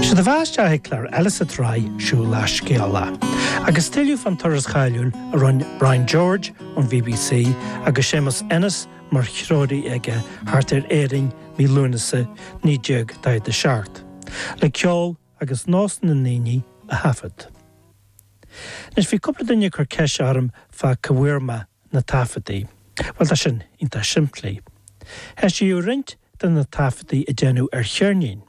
Sé do bheatha isteach chuig clár eile sa tsraith Siúlach Scéalach. Agus tuilleadh fán turas cháiliúil a rinne Brian George ón BBC agus Séamus Ennis mar threoraí aige thart ar Éirinn mí Lúnasa 1947, le ceol agus nós na ndaoine a thaifead. Anois, bhí cúpla duine ag cur ceist orm fá cá bhfuair mé na taifeadtaí. Bhuel, tá sin iontach simplí. hEisíodh roinnt de na taifeadtaí a deineadh ar cheirnín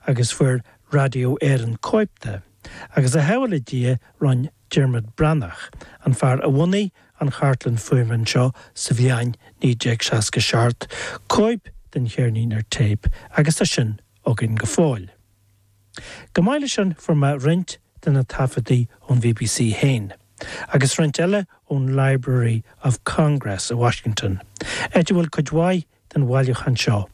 agus fuair Radio Éireann cóip de, agus a bhuí le Dia rinn Diarmuid Breathnach, an fear a bhunaigh an chartlann fuaime anseo sa bhliain 1967, cóip den cheirnín ar téip agus tá sin againn go fóill. Chomh maith leis sin fuair mé roinnt de na taifeadtaí ón bbc féin, agus roinnt eile ón Library of Congress i Washington, áit a bhfuil cuid mhaith den bhailiúchán seo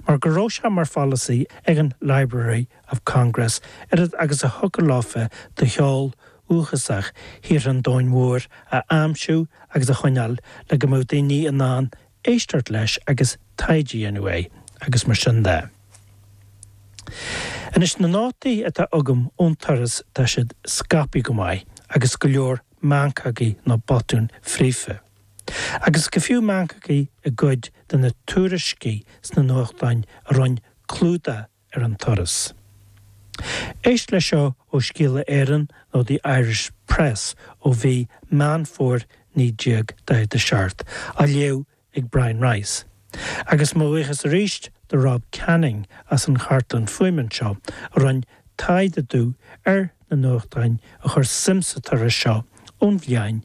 mar go raibh sé mar pholasaí ag an Library of Congress oiread agus a thiocfadh leofa de cheol dhúchasach thíortha an domhain mhóir a aimsiú agus a choinneáil le go mbeadh daoine in ann éisteacht leis agus taighde a dhéanamh air agus mar sin de. Anois, na nótaí atá agam ón turas tá siad scaipthe go maith agus go leor meancógaí nó botúin fríofa. Agus go fiú meancógaí i gcuid de na tuairiscí sna nuachtáin a rinn clúdach ar an turas. Éist leis seo ó Scéala Éireann nó The Irish Press ó mhí Meán Fómhair 1947, á léamh ag Brian Rice, agus mo bhuíochas arís do Rob Canning as an chartlann fuaime anseo, a rinn taighde domh ar na nuachtáin a chuir suim sa turas seo ón bhliain